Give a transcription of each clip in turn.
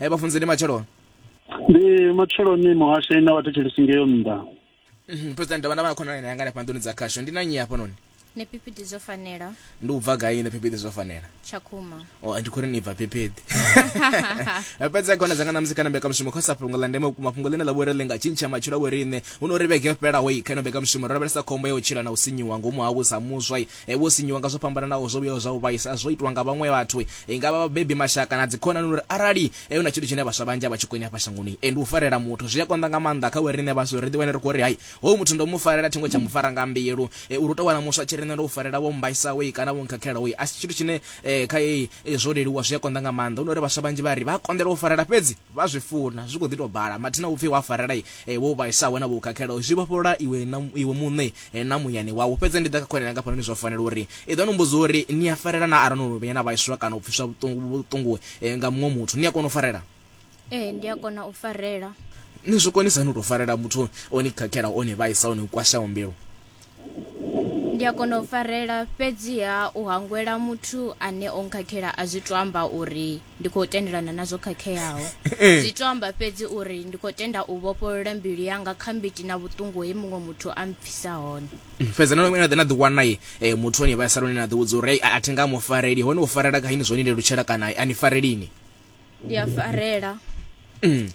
e vha funzeni matsheloni ndi matsheloni muhasho ina wa thetshelesi ngeyo nnḓa mhm, president ndavha na vha khonani na yanga nefha nḓuni dza khasho ndi na nyi hafha noni ni phiphiḓi zwo fanela ndi u bva gai ni phiphiḓi zwo fanela tshakhuma o oh, ndi khou ri ni bva phiphiḓi fhedza khona dzanga namusi kana mbekamushumo kha sa fhungo ḽa ndeme vhukuma fhungo ḽine ḽa vhori ḽi nga tshintsha matshilo a vhoriṋe hu no ri vhege yo fhelaho i kha ino mbekamushumo ro lavhelesa khombo ya u tshila na u sinyiwa ngomu havho sa muswa Vho sinyiwa nga zwo fhambananaho zwo vhuyaho zwa u vhaisa zwo itwa nga vhaṅwe vhathu, i nga vha vhabebi, mashaka na dzikhonani. Uri arali hu na tshithu tshine vhaswa vhanzhi a vha tshi koni hafha shangoni, ndi u farela muthu. Zwi a konḓa nga maanḓa kha vhoriṋe vhaswa uri ri ḓiwane ri khou ri, Hai, hoyu muthu ndo mu farela, thi ngo tsha mu fara nga mbilu. Uri u tou wana muswa a tshi ri, Nṋe ndo u farela, wo mmbaisaho kana wo nkhakhelaho, a si tshithu tshine kha zwo leluwa, zwi a konḓa nga maanḓa. Hu no uri vhaswa vhanzhi vha ri vha a konḓelwa u farela, fhedzi vha zwi funa zwi khou ḓi tou bala, mathina vhupfi wa farela e, vho vhaisaho na vho khakhelaho zwi vhofholola iwe na iwe muṋe e, na muyani wau. Fhedzi ndi ḓa kha khonani yanga fhanoni zwo fanela uri i ḓo ni mbudza uri ni a farela naa arali no no vhuya na vhaiswa kana u pfiswa vhuṱungu vhuṱungu e, nga muṅwe muthu ni a kona u farela? Ee, ndi a kona u farela. Ni zwi konisa hani u tou farela muthu o ni khakhelaho, o ni vhaisaho, o ni kwashaho mbilu? Ndi a kona u farela, fhedziha u hangwela muthu ane o nkhakhela a zwi to amba uri ndi khou tendelana na zwo khakheaho. Zwi to amba fhedzi uri ndi khou tenda u vhofholola mbilu yanga kha mbiti na vhuṱungu he muṅwe muthu a mpfisa hone. fhedza na na ḓe na ḓi wana ye eh, muthu ane vha saloni na ḓi vhudza uri "Ei, a a thi nga mu fareli hone u farela kha ini zwo ni lelutshela kana a ni farelini ndi a farela mm.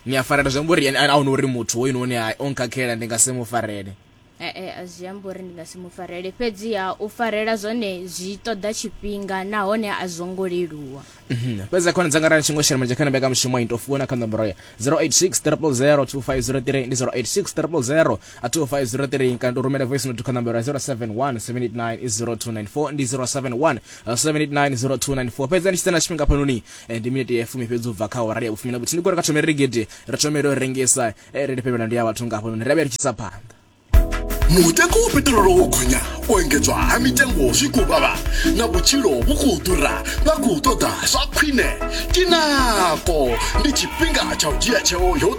ni a farela zwi amba uri a huna uri muthu hoyu noni o nkhakhela ndi nga si mu farele ee eh, eh, a zwi amba uri ndi nga si mu farele fhedziha u farela zwone zwi ṱoḓa tshifhinga nahone a zwo ngo leluwa mhm. fhedzi khona dzanga rani tshingo shela manje khana mbeka mushumo into fuona kha nomboro ya 086 000 2503 ndi 086 000 25003 kana utumele voice note kha nambero ya 0717890294 ndi 0717890294 pedzani chisena chifhinga panoni eh, ndi miniti ya fumi fhedzi ubva kha orari ya vhufumi na vhutini kuri ka thomere rigidi ri thomere u rengisa eh, ri lifhevhela ndi ya vhathu nga hafhanoni ri a vhuya ri tshisa phanḓa mutengo wo petirolo wo gonya u engedzwa ha mitengo zwi khou vhavha na vhutshilo vhu khou ḓura vha khou ṱoḓa zwa khwine tinako ndi tshifhinga tsha u dzhia tsheo yo